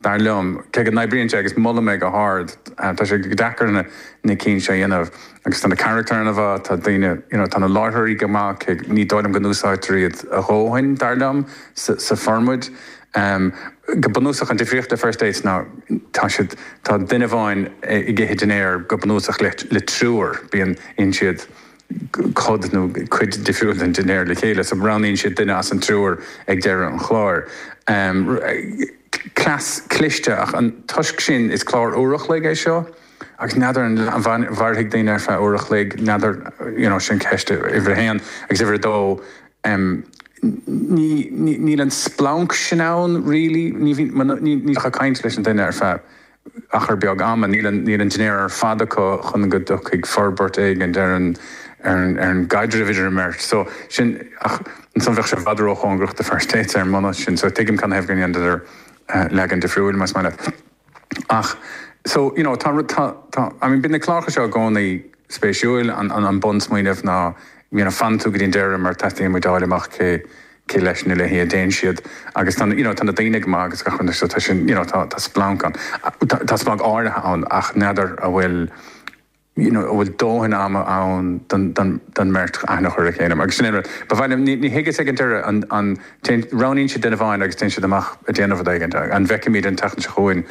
dar liom, cé go n-oibríonn sé agus molaim é go hard, tá sé go deacair na cinn seo a dhéanamh agus tá na carachtair ana mhaith, tá daoine, you know, tá na láithreoirí go maith, ní dóigh liom go n-úsáidtear iad a dhóthain, dar liom, sa formáid. Go bunúsach an difríocht le First Dates ná tá siad, tá duine amháin ag ithe dinnéar go bunúsach le triúr, bíonn, itheann siad, cuid nó cuid difriúil den dinnéar le chéile so roghnaíonn siad duine as an triúr ag deireadh an chláir. Cleas cliste ach toisc sin is clár uair a chloig é seo agus n'fheadar an mhairfidh daoine ar feadh uair a chloig, n'fheadar you know sin ceist uimhir a haon agus uimhir a dó ní níl an splanc sin ann really ní bhíonn ní bheadh caint leis an duine ar feadh achar beag ama, níl an dinnéar ar fad acu chun go dtiocfaidh forbairt éigin ar an gcaidreamh idir an mbeirt so, sin, ach ansan bheadh sé i bhfad róchóngarach do First Dates ar an mbunús sin so tuigim canathaobh go ndéanadar leagan difriúil, más maith leat. Ach so, you know, tá rud, tá, tá, I mean bíonn na cláracha seo i gcónaí spéisiúil, an bunsmaoineamh ná, you know, fanann tú go dtí an deireadh mar teastaíonn uait a fháil amach cé, cé leis nó léi a dtéann siad agus tá na, you know, tá na daoine go maith agus gach rud so tá sin, you know, tá, tá splanc ann. Tá splanc áirithe ann ach n'fheadar an bhfuil, you know, a bhfuil dóthain ama ann don, don, don mbeirt aithne a chur ar a chéile agus sin é an rud. Ba mhaith liom, ní, ní thuigeas ag an deireadh an, an, téann, roghnaíonn siad duine amháin agus téann siad amach a' déanamh rud éigin, an bhfeicfimid an tseachtain seo chugainn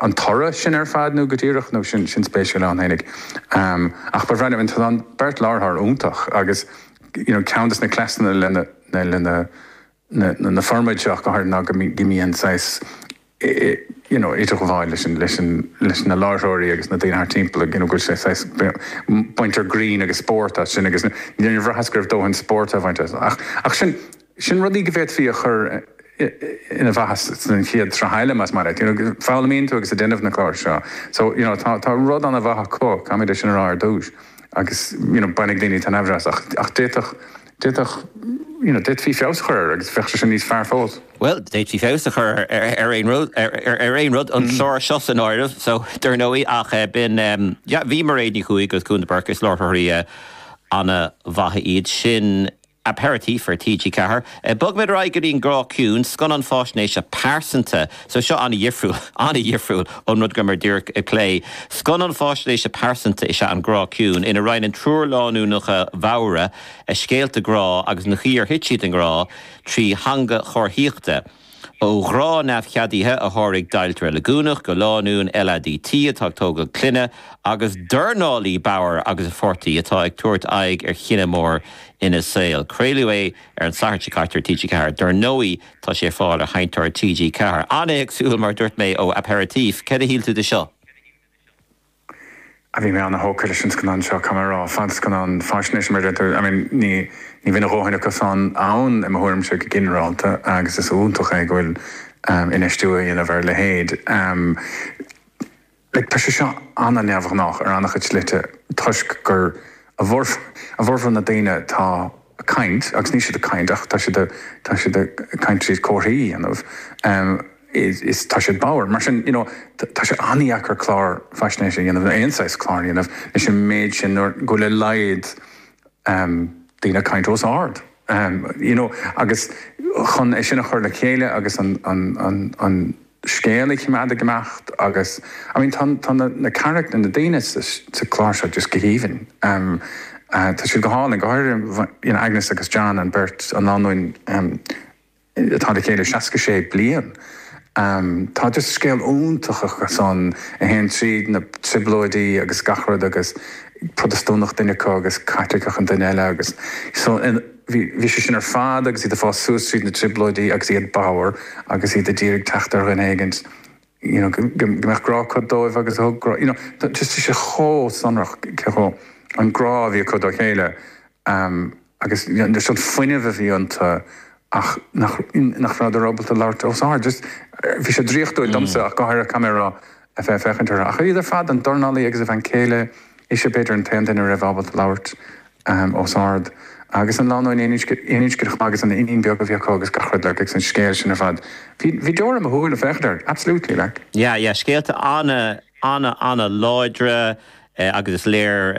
an toradh sin ar fad nó go díreach nó sin, sin spéisiúil ann fhéinig. Ach ba bhreá liom, tá an beirt láithreoir iontach agus. Ceann de na cleasanna leis na formáidí seo go háirithe ná go mbíonn saghas idirghabháil leis na láithreoirí agus na daoine thart timpeall, go bhfuil sé saghas. baintear greann agus spórt as sin agus níor bhraitheas go raibh dóthain spóirt á bhaint as. Ach sin. Sin rudaí go bhféadfaí a chur i bhfeabhas don chéad sraith eile, más maith leat. Foghlaimíonn tú agus ag déanamh na gclár seo so you know tá rud an-mhaith acu, caithfimid é sin a rá ar dtús, agus you know bainfidh daoine taitneamh as ach d'fhéadfadh, d'fhéadfadh you know d'fhéadfaí feabhas a chur air agus bheadh sé sin níos fearr fós. Bhuel, d'fhéadfaí feabhas a chur ar aon rud, ar aon rud, an clár seo san áireamh so dar ndóigh ach b'in yeah bhí Mairéad Ní Chuaig agus Cúnla Burke, is láithreoirí an-mhaithe iad sin. Aperitif ar TG4. Bogaimid ar aghaidh go dtí an grá ciúin, scannán fáisnéise pearsanta. So seo an-dhifriúil, an-dhifriúil ón rud go rabhamar díreach ag plé. Scannán fáisnéise pearsanta is ea An Grá Ciúin, ina roinneann triúr lánúineacha bhodhra a scéalta grá agus an chaoi ar thit siad i ngrá trí theanga chomharthaíochta. Ó ghrá neamhcheadaithe a sháraigh deighilt reiligiúnach go lánúin LADT atá ag tógáil clainne agus dornálaí bodhar agus a pháirtí atá ag tabhairt aghaidh ar chinneadh mór ina saol. Craoladh é ar an Satharn seo caite ar TG4. Dár ndóigh tá sé ar fáil ar sheinnteoir TG4. An-éagsúil mar dúirt mé ó Aperitif. Cad a shíl tú de seo? a bhí mé an-thógtha leis an scannán seo, caithfidh mé a rá, fadscannán faisnéise mar a deirtear. I mean, ní bhíonn a dhóthain acusan ann, i mo thuairimse, go ginearálta agus is iontach é go bhfuil infheistiú á dhéanamh ar a leithéid. Like, tá sé seo ana-neamhghnách ar an-chuid slite toisc gur, i bhformhór na ndaoine atá a' caint, agus níl siad a' caint ach tá siad a, tá siad a' caint tríd comharthaí a dhéanamh. is tá siad bodhar. Mar sin, you know, tá sé an-deacair clár faisnéise a dhéanamh, nó aon saghas cláir a dhéanamh, leis an méid sin, nuair go bhfuil a laghad ehm daoine ag caint os ard. Ehm, you know, agus chun é sin a chur le chéile agus an, an, an, an scéal a choimeád ag imeacht agus, I mean, tá, tá na, na carachtair, na daoine sa, sa chlár seo just go haoibhinn. Ehm, tá siad go hálainn, go háirithe you know, Agnes agus John, an beirt, an lánúin, ehm, atá le chéile 66 bliain. Tá just scéal iontach acusan a théann tríd na trioblóidí agus gach rud agus Protastúnach duine acu agus Caitliceach an duine eile agus so bhí sé sin ar fad agus iad ag fás suas tríd na trioblóidí agus iad bodhar agus iad a d'iarraidh teacht ar dhuine éigint you know go mbeadh grá acu dóibh agus a thug grá you know just tá sé chomh sonrach cé chomh an grá a bhí acu dá chéile ehm agus you know just an fuinneamh a bhí iontu ach nach nach rabhadar ábalta labhairt os ard just bhí sé draíochtúil domsa ach go háirithe caithfidh mé a rá a bheith féachaint orthu ach iad ar fad an dornálaí agus a bhean céile ise b'fhéidir an t-aon duine a raibh ábalta labhairt ahem, os ard, agus an lánúin aoninscneach agus an iníon beag a bhí acu agus gach rud, like, agus an scéal sin ar fad. Bhí, bhí deora i mo shúile, féachaint air, absolutely, like. Yeah, yeah, scéalta ana, ana, ana láidre agus is léir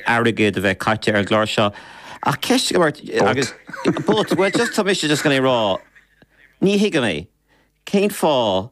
airgead a bheith caite ar an gclár seo ach ceist agam ort agus, but, well, just, tá mise just chun é a rá, ní thuigim é, cén fáth